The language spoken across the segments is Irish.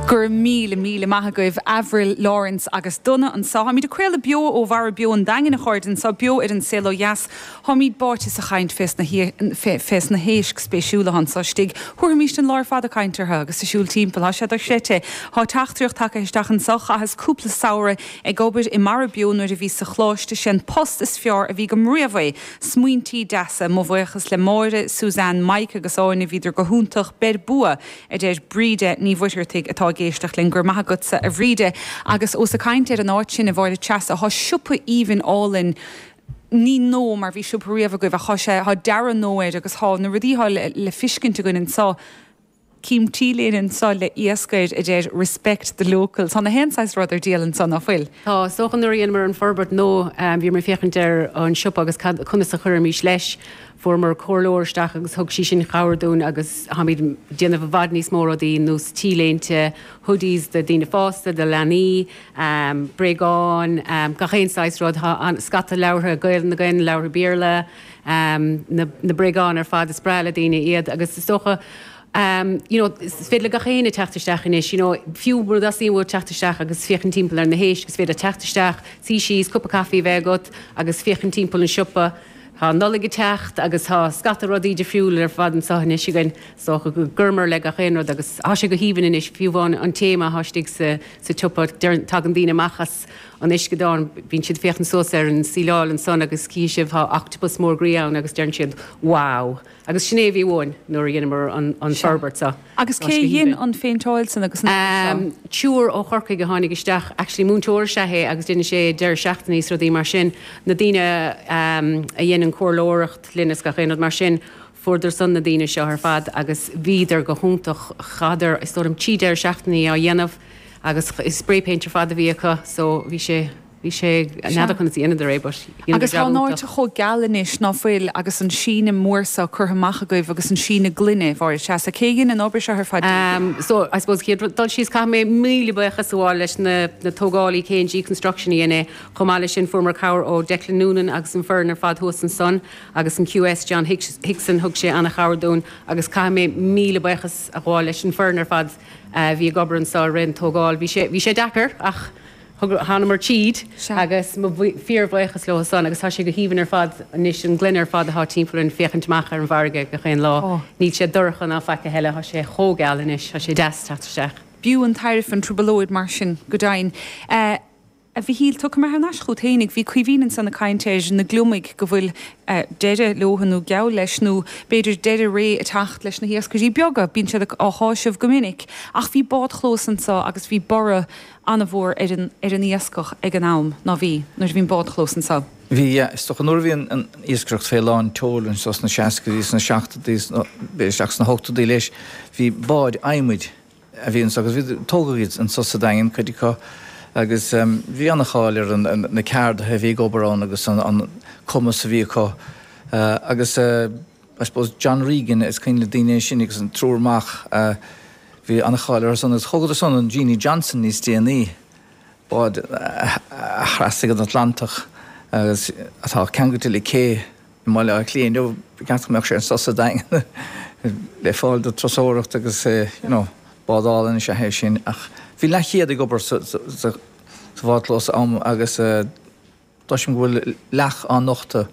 Go raibh míle, míle maith agaibh Avril, Laurence agus Donagh anseo. Táimid ag craoladh beo ó Mhara Beo an Daingin, a chairde, anseo beo ar An Saol Ó Dheas. Táimid báite sa chaint fé sna fé sna héisc spéisiúla anseo istigh. Thabharfaimis an lá ar fad ag caint orthu agus ag siúl timpeall. Tá sé dochreidte. Tá teachtaireacht tagtha isteach anseo, Chaitheas cúpla samhradh ag obair i Mara Beo nuair a bhíos sa choláiste. Sé an post is fearr a bhí agam riamh é. Smaointí deasa. Mo bhuíochas le Máire, Suzanne, Mike agus Áine, bhíodar go hiontach. Beir bua! a deir Bríde Ní Mhuircheartaigh atá ag éisteacht linn. Go raibh maith agatsa a Bhríde. Agus ós ag caint ar an áit sin, a Mháire Treasa, tá siopa aoibhinn álainn, ní nua mar bhí siopa riamh agaibh ach tá sé, tá dearadh nua air agus tá na rudaí atá le fiscint againn anseo, Cím T-léine anseo le iasc air, a deir Respect the Locals. Tá nach aon saghas rud ar díol anseo, ná fuil? Tá, is dócha nuair a dheineamar an forbairt nua bhíomar ag féachaint ar an siopa agus cad, conas a chuirfimis leis. Fuaireamar comhairleoir isteach agus thug sí sin cabhair dúinn agus táimid ag déanamh i bhfad níos mó rudaí nós T-léinte, hoodies do daoine fásta, do leanaí, bréagáin, gach aon saghas rud. Tá scata leabhartha Gaeilge againn, leabhartha Béarla, na bréagáin ar fad, is breá le daoine iad agus is dócha you know is féidir le gach éinne teacht isteach anois you know fiú mura dteastaíonn uait teacht isteach agus féachaint timpeall ar na héisc is féidir leat teacht isteach, suí síos, cupa caife a bheith agat agus féachaint timpeall an siopa. Tá an Nollaig ag teacht agus tá scata rudaí difriúil ar fad anseo anois againn. Is dócha go gcuireamar le gach aon rud agus tá sé go haoibhinn anois, fiú amháin an téama atá istigh sa tsiopa. Deireann, tagann daoine amach as an uisceadán, bíonn siad ag féachaint suas ar an síleáil ansan agus cífidh sibh tá octopus mór groí ann agus deireann siad 'wow'. Agus sin é a bhí uainn nuair a dheineamar an forbairt seo. Sea. Agus cé a dhein an phéinteáil san agus an obair seo? Fear ó Chorcaigh a tháinig isteach, actually múinteoir is ea é agus deineann sé deireadh seachtainí is rudaí mar sin. Na daoine a dhein an chomhairleoireacht linn is gach aon rud mar sin, fuaireadar san na daoine seo ar fad agus bhíodar go hiontach. Chaitheadar, is dóigh liom, trí deireadh seachtainí á dhéanamh agus is spray paint ar fad a bhí acu so bhí sé, Bhí sé Sea. n'fheadar conas a dheineadar é but dheineadar Agus job tá an áit iontach. chomh geal anois, ná fuil, agus an síneadh mór seo curtha amach agaibh agus an síneadh gloine, Mháire, sea. So cé a dhein an obair seo ar fad díbh? Am, so I suppose chéad rud, dul síos, caithfidh mé míle buíochas a ghabháil leis na, na tógálaí, KNG Construction a dhein é. Chomh maith leis sin fuaireamar cabhair ó Declan Noonan agus an foireann ar fad thuas ansan agus an QS, John Hicks, Hickson, thug sé an-chabhair dúinn agus caithfidh mé míle buíochas a ghabháil leis an foireann ar fad a bhí ag obair anso i rith an tógáil. Bhí sé, bhí sé deacair ach. Thánamar tríd agus fíorbhuíochas leothu san agus tá sé go haoibhinn ar fad anois, an ghloine ar fad atá timpeall orainn féachaint amach ar an bhfarraige gach aon lá. Níl sé dorcha ná faic a thuilleadh, tá sé chomh geal anois, tá sé deas teacht isteach. B'fhiú an tairbhe an trioblóid mar sin go deimhin. A Mhichíl, tiocfaidh mé thar n-ais chugat féinig bhí Caoimhín ansan ag caint ar na gliomaigh go bhfuil deireadh leothu nó geall leis nó b'fhéidir deireadh ré ag teacht leis na hiascairí beaga, bíonn siad á chásamh go minic ach bhí bádchlós anso agus bhí borradh an-mhór ar an, ar an iascach ag an am, ná bhí, nuair a bhí an bádchlós anseo. Bhí, yeah, is dócha, nuair a bhí an, an iascaireacht fé lán tseoil anseo sna seascaidí, sna seachtadaí, sna, b'fhéidir isteach sna hochtadaí leis, bhí báid adhmaid a bhí anseo agus bhí, tógadh iad anseo sa Daingean, cuid acu, agus bhí an-cháil ar an, na ceardaithe a bhí ag obair ann agus an, an cumas a bhí acu agus. I suppose John Regan is cuimhin le daoine é sin agus an triúr mac a bhí an-cháil orthusan agus thógadar san an Jeanie Johnston níos déanaí, bád a thrasnaigh an Atlantach agus atá ceangailte le cé i mBaile Átha Cliath inniu. Ba cheart go mbeadh sé anso sa Daingean le fáil do turasóireacht agus eh you know bád álainn is ea é sin ach bhí leathchéad ag obair sa bhád clós am agus eh Cloisim go bhfuil leac á nochtadh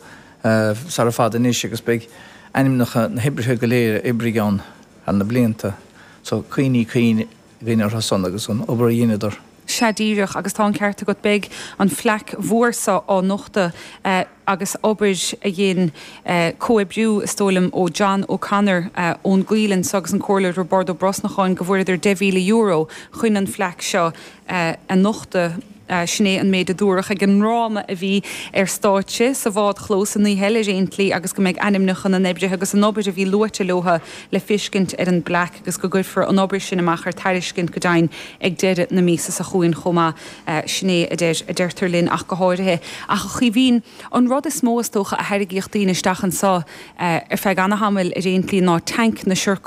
sara fad anois agus beidh ainmneacha na hoibrithe go léir a oibrigh ann thar na blianta so cuimhní cinn againn orthu san agus an obair a dheineadar. Sea díreach agus tá an ceart agat, beidh an phlaic mhór so á nochtadh agus obair a dhein comhoibriú is dóigh liom ó John O Connor ón gCoill anso agus an Comhairleoir Roibeárd Ó Brosnacháin go bhfuaireadar €10,000 chun an phlaic seo a nochtadh. Sin é an méid a dúradh ag an ndráma a bhí ar stáitse sa bhádchlós an oíche eile ar aon tslí agus go mbeidh ainmneacha na n-oibrithe agus an obair a bhí luaite leo le feiscint ar an bplaic agus go gcuirfear an obair sin amach ar tairiscint go deimhin ag deireadh na míosa seo chugainn chomh maith. Sin é a deirtear linn ach go háirithe. Ach a Chaoimhín, an rud is mó is dócha a tharraingíodh daoine isteach anseo ar feadh ana-thamaill ar aon tslí ná tanc na siorc,